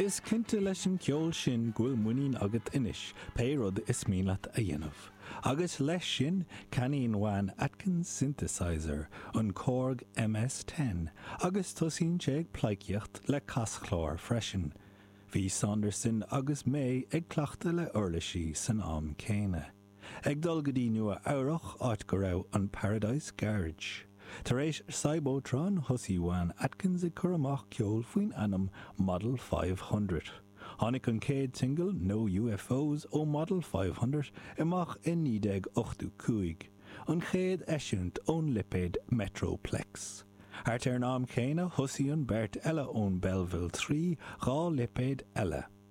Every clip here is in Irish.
Is cinnte leis an ceol sin go bhfuil muinín agat anois pé rud is mian leat a dhéanamh. Agus leis sin, ceannaíonn Juan Atkins synthesizer, an Korg MS-10, agus tosaíonn sé ag pleidhcíocht le caschláir freisin. Bhí Saunderson agus May ag cleachtadh le uirlisí san am céanna. Ag dul go dtí Nua-Eabhrac, áit go raibh an Paradise Garage. Tar éis Cybotron, thosaigh Juan Atkins ag cur amach ceol faoin ainm Model Five Hundred. Tháinig an chéad singil, No UFOs, ó Model Five Hundred amach i 1985, an chéad eisiúint ón lipéad Metroplex. Thart ar an am céanna, thosaigh an beirt eile ón Belleville Three dhá lipéad eile.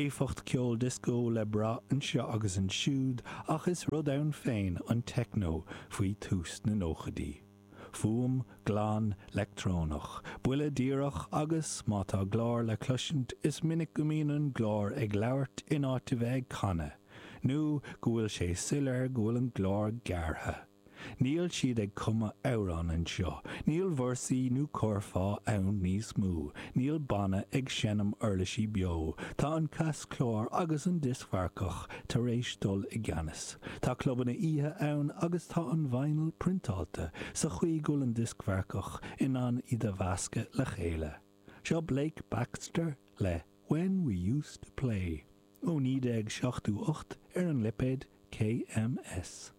éifeacht ceoil dioscó le brath anseo agus ansiúd ach is rud ann féin an techno faoi tús na nóchaidí. Fuaim glan leictreonach, buille díreach agus má tá glór le cloisint is minic go mbíonn an glór ag labhairt in áit a bheith ag canadh nó go bhfuil sé soiléir go bhfuil an glór gearrtha. Níl siad ag cumadh amhrán anseo, níl véarsaí nó curfá ann níos mó, níl banna ag seinm uirlisí beo, tá an caschlár agus an dioscmharcach tar éis dul i gceannas. Tá clubanna oíche ann agus tá an vinyl priontáilte sa chaoi go bhfuil an dioscmharcach in ann iad a mheascadh le chéile. Seo Blake Baxter le When We Used To Play ó 1978 ar an lipéad KMS.